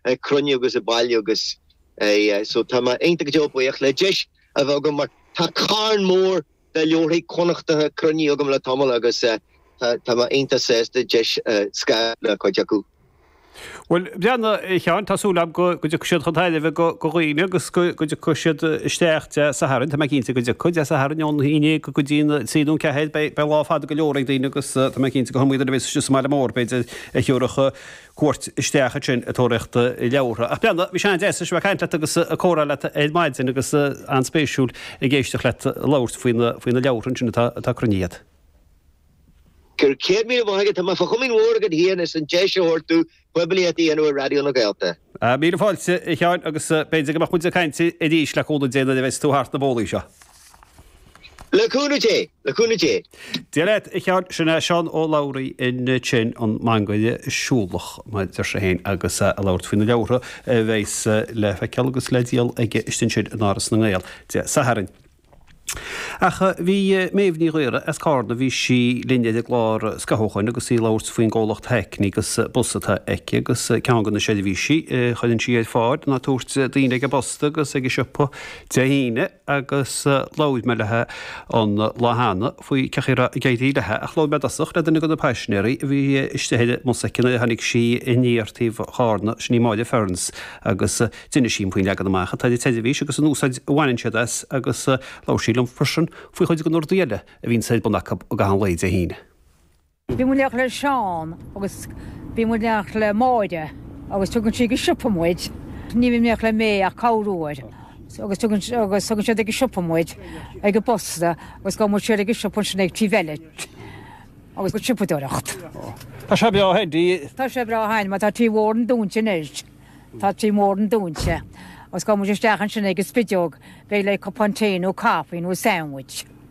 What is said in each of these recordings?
ag cruinniú agus ag bailiú agus so tá mé iontach go deo buíoch le deis a bheith agam mar tá carn mór de leabharthaí Connachtacha cruinnithe agam le tamall agus tá mé iontach sásta deis a scaradh le cuid acu. Bhuel, breathnaigh, a Sheáin, tá súil agam go dtiocfaidh siad chun tairbhe do dhaoine agus go dtiocfaidh siad isteach Dé Sathairn, tá mé cinnte go dtiocfaidh, Dé Sathairn ón haon go dtí an trí nó an ceathair beidh lá fada go leor ag daoine agus tá mé cinnte go mbeidh muid ar bís, is maith le mór, b'fhéidir, a thiúrfadh cuairt isteach ansin ag tóraíocht leabhartha. Ach breathnaigh, bhí sé an-deas a bheith ag caint leat agus ag comhrá leat ar maidin agus an-spéisiúil ag éisteacht leat labhairt faoi na, faoi na leabhartha ansin atá, atá cruinnithe agat. Gura céad míle maith agat, tá mé fá chomaoin mhór agat fhéin as an deis a thabhairt domh poiblíocht a dhéanamh ar Raidió na Gaeltachta. Míle fáilte, a Sheáin, agus b'fhéidir go mbeadh muid ag caint arís le cúnamh Dé nuair a bheas tú thart na bólaí seo. Le cúnamh Dé! Le cúnamh Dé! Dia leat, a Sheáin, sin é Seán Ó Labhraí in Tinn, an mangaire siúlach, mar a deir sé féin, agus é ag labhairt faoi na leabhartha a bheas le feiceáil agus le díol aige istigh ansin in Áras na nGael Dé Sathairn. Ach bhí Méabh Ní Ghaora as Carna, bhí sí linn ar an gclár scaitheamh ó shin agus í ag labhairt faoin gcomhlacht Hackney agus bus atá aici, agus ceann de na seirbhísí a chuireann sí ar fáil ná ag tabhairt daoine ag an bposta agus ag an siopa Dé hAoine. agus labhair mé léi an lá cheana faoi cén chaoi a raibh ag éirí léi ach labhair mé i dtosach le duine de na paisinéaraí a bhí istigh ar an mbus aici a tháinig sí aniar taobh Chárna, sin í Máire Ferns agus d'inis sí faoin leagan amach atá ag an tseirbhís agus an úsáid a bhaineann siad as agus labhair sí liom freisin faoi chuid de na rudaí eile a bhíonn ar bun acu i gcaitheamh an lae Dé hAoine. Bíonn muid ag teacht le Seán agus bíonn muid ag teacht le Máire agus tugann sí go siopa muid. Ní bhím ag teacht le May ach corruair agus tugann sí agus tugann siad ag an siopa muid ag an bposta agus gabhann muid siar ag an siopa ansin ag Tí Bheile agus go siopadóireacht. Tá sé breá thar dí. Tá sé breá thar dí mar tá Tí Mhór an Dúin sin anois. Tá Tí Mhór an Dúin sin agus gabhann muid isteach ansin ag an spideog beidh le cupán tae nó caife nó sandwich.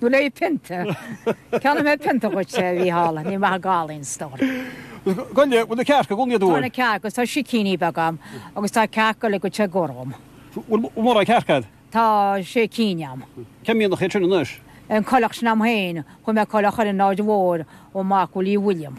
Nó leathphionta. Ceannóidh mé pionta dhuit, a Mhícheál. Níl maith gal in store. Gabh i leith, bhfuil na cearca i gcónaí, a'd fós? Tá na cearca agus tá sicíní beaga a'm agus tá cearca le go te gorm. Bhfuil mórán cearca a'd? Tá sé cinn a'm. Cén mbliain a chaith sin anois? An coileach sin a'm féin. Fuair mé coileach ar an Áird Mhór ó Mac Uilliam.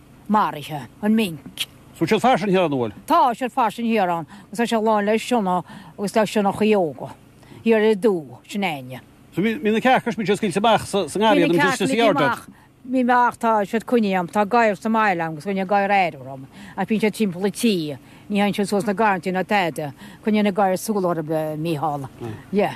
maraithe, an Minc. Bhfuil siad fairsing thiar an Uail? Tá, tá siad fairsing thiar ann agus tá siad lán le sionnaigh agus le sionnachaí óga. Thiar i dTú, sin éinne. So bhí na cearca is bhí siad scaoilte amach sa sa ngarraí agus bhí siad sa yard a'd. Bhí mé ach tá siad coinnithe a'm. Tá gadhar sa mbaile a'm agus coinníonn an gadhar aire orthu ach bíonn siad timpeall an tí. Ní théann siad suas na garrantaí ná tada. Coinníonn an gadhar súil orthu, Mícheál. Yeah.